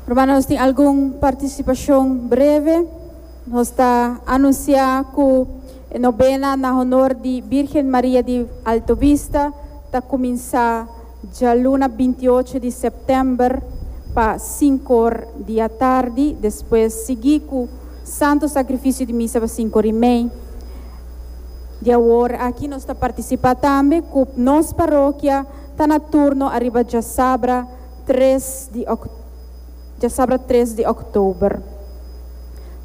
Promé nos tin algun partisipashon breve. Nos ta anunsiá ku e nobena na honor di Bírgen Maria di Alto Vista ta kuminsá djaluna binti i ocho di sèptèmber pa sinku or di atardi, despues sigui ku Santu Sakrifisio di Misa pa sinku or i mei. Di awor aki nos ta partisipá tambe ku nos parokia. Ta na turno ariba djasabra tres di djasabra tres di Oktober.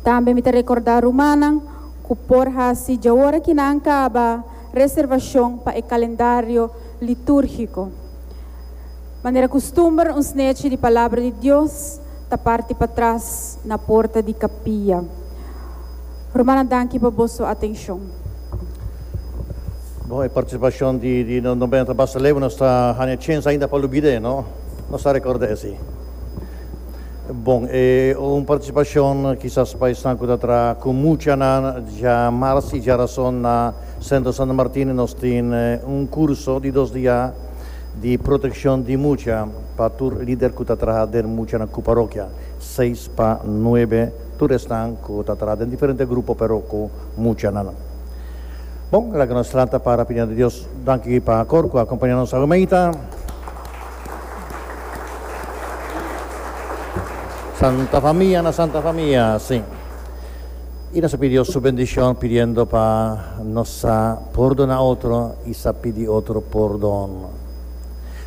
Tambe mi ta rekordá rumannan ku por hasi djaora ki nan kaba reservashon pa e kalendario litúrgiko. Manera kustumber un snechi di Palabra di Dios ta parti patras na porta di kapia. Rumannan danki pa boso atenshon. Bon, e partisipashon di di nos nobenta Bastaleu nos ta haña chens ainda pa lubid'é, no? Nos ta rekord'é esei. Bon, e un partisipashon kisas pa esnan ku ta traha ku muchanan dja mars i dja rason na Sentro Santo Martin nos tin un kurso di dos dia di protekshon di mucha pa tur lider ku ta traha den muchanan ku parokia, seis pa nuebe tur esnan ku ta traha den diferente grupo pero ku muchanan. Bon, laga nos lanta para pa dianti Dios. Danki pa kor ku a kompañá nos Almeida. Santa Famia na Santa Famia, si. I nos a pidi Dios su bendishon pidiendo pa nos sa pordona otro i sa pidi otro pordon.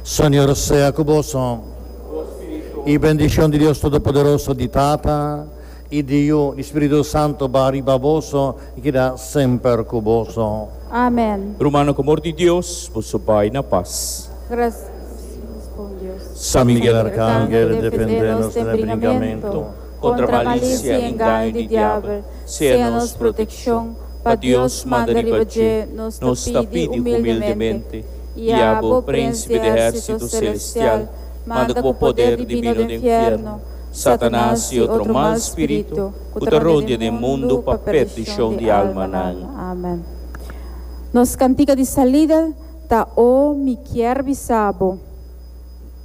Señor sea ku boso. I bendishon di Dios Todopoderoso, di Tata. I diu di Spiritu Santo ba riba boso i keda semper ku boso. Amen. Rumano ku amor di Dios, boso bai na pas. Grasias bon Dios. San Miguel Arkangel defendé nos den e bringamentu, kontra malisia i engaño di diabel, sea nos protekshon, pa Dios manda riba dje nos ta pidi humildemente, i abo, Prènsipe di ehérsito selestial, manda ku bo poder dimino den nfierno, Satanas i otro mal spiritu ku ta rodia den mundu pa perdishon di almanan. Amen. Nos kantika di salida ta, O mi kèr bisa Bo.